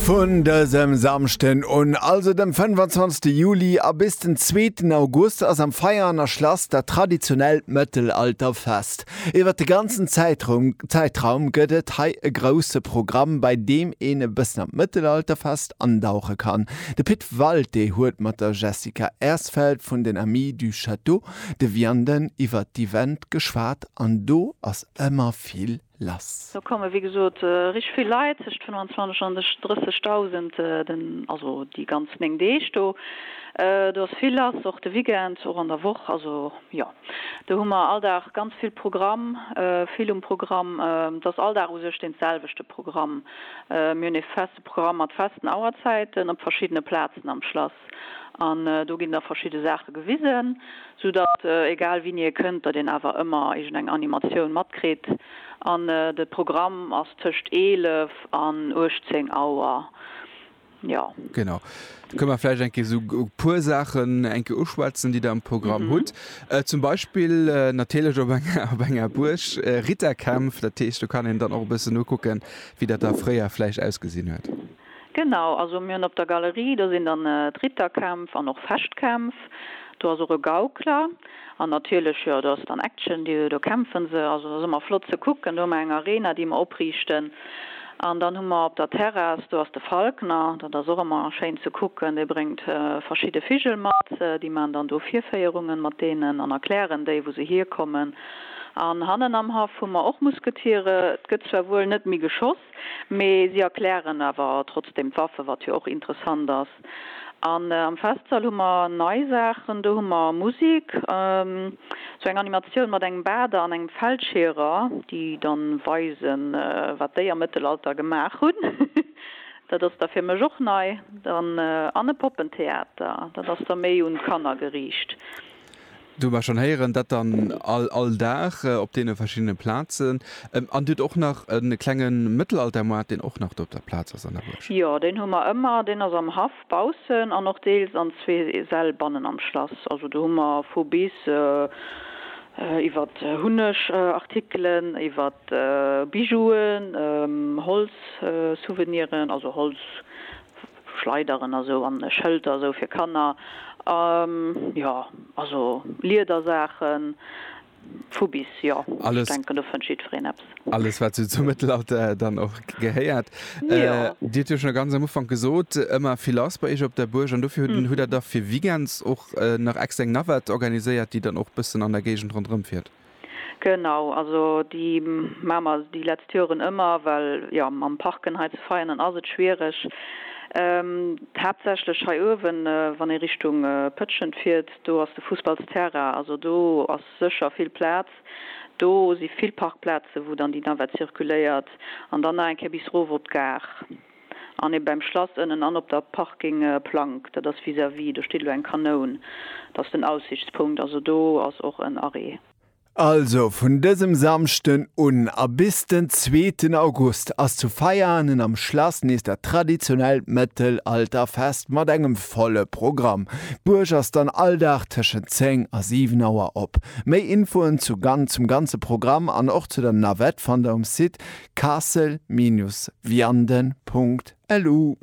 Vun dësem Samschden un, also dem 25 Juli, a bis den zweeten August ass am Veianer Schlass dat traditionellt Mëttelalterfest. Iwwer de ganzen Zäitrum Zäitraum gëtt et hei e grousse Programm, bei deem een e bëssen an d'Mëttelalterfest andauche kann. De Pit Walté huet mat der Jessica Ersfeld vun den Amis du Château de Vianden iwwer d'Event geschwat an do ass ëmmer vill lass. Do komme wéi gesot richteg vill Leit, tëscht 25 an 30.000, also déi ganz 9 Deeg do. Do ass vill lass, och de Weekend, och an der Woch. Also jo, do hu mer all Dag ganz vill Programm, vill um Programm. Et ass all Dag u sech dee selwechte Programm. Mir hunn ee feste Programm mat festen Auerzäiten op verschiddene Plazen am Schlass. An do ginn da verschidde Saache gewisen, sou datt egal wien hie kënnt, datt een awer ëmmer iergendeng Animatioun matkritt. An de Programm ass tëscht 11 an 18 Auer, jo. Genau, da kënne mer vläicht eng Kéier esou e puer Saachen eng Kéier uschwätzen, déi Der am Programm hutt. Zum Beispill natierlech op enger op enger Buerg, Ritterkämpf. Dat heescht, do kann een dann och e bëssen nokucken, wéi dat da fréier vläicht ausgesinn huet. Genau, also mir hunn op der Galerie, do sinn dann d'Ritterkämpf an och Fechtkämpf, do ass och e Gaukler an natierlech, jo, do ass dann Action, do kämpfe se. Also dat ass ëmmer flott ze kucken. Do hu mer eng Arena, déi mer opriichten an dann hu mer op der Terrass, do ass de Falkner, dat ass och ëmmer schéin ze kucken, dee bréngt verschidde Vigel mat, déi maachen dann do Virféierungen mat deenen an erklären déi, wou se hierkommen. An hannen am Haff hu mer och Musketiere, et gëtt zwar wuel net méi geschoss, Mee si erklären awer trotzdem d'Waffe, wat jo och interessant ass. An am Festsall hu mer nei Saachen, do hu mer Musik, sou eng Animatioun mat engem Bader an engem Feldscheerer, déi dann weisen, wat déi am Mëttelalter gemaach hunn, dat ass da fir mech och nei, dann an e Poppentheater, dat ass da méi un d'Kanner geriicht. Do mer schonn héieren dat dann all all Dag op deene verschiddene Plazen. An Dir hutt och nach e klenge Mëttelaltermoart, deen och nach do op der Plaz ass an der Buerg? Jo, deen hu mer ëmmer. Deen ass am Haff baussen an och deels an zwee Säll bannen am Schlass. Also do hu mer vu bis, iwwert Hunnegartikelen, iwwert Bijouen, Holzsouveniren, also Holz. Schleideren a sou an Schëlter a sou fir Kanner. Jo, also Liedersaachen, vu bis, jo. Ech denken, do fënnt jiddwereen eppes. Alles, wat sou zum Mëttelalter dann och gehéiert. Dir hutt jo schonn ganz am Ufank gesot, ëmmer vill lass bei iech op der Buerg. An dofir hutt Der da fir Weekends och nach extra eng Navette organiséiert, déi dann och e bëssen an der Géigend ronderëmfiert? Genau, also déi maache mer déi letzt Joren ëmmer, well jo mam Parken hei zu Veianen ass et schwiereg, haaptsächlech hei uewen, wann ee Richtung Pëtschent fiert, do ass de Fussballsterrain, also do ass sécher vill Plaz, do si vill Parkplaze wou dann déi Navette circuléiert an dann nach eng Kéier bis erof op d'Gare. An ee beim Schlass ënnen an op der Parking Plank, dat ass vis-à-vis, do steet elo eng Kanoun, dat ass den Aussichtspunkt, also do ass och en Arrêt. Also vun dësem Samschden un a bis den zweeten August ass zu Veianen am Schlass nees dat traditionellt Mëttelalterfest mat engem volle Programm. D'Buerg ass dann all Dag tëschent 10 a 7 Auer op. Méi Infoen zu zum ganze Programm an och zu der Navette fannt der um Site castle-vianden.lu.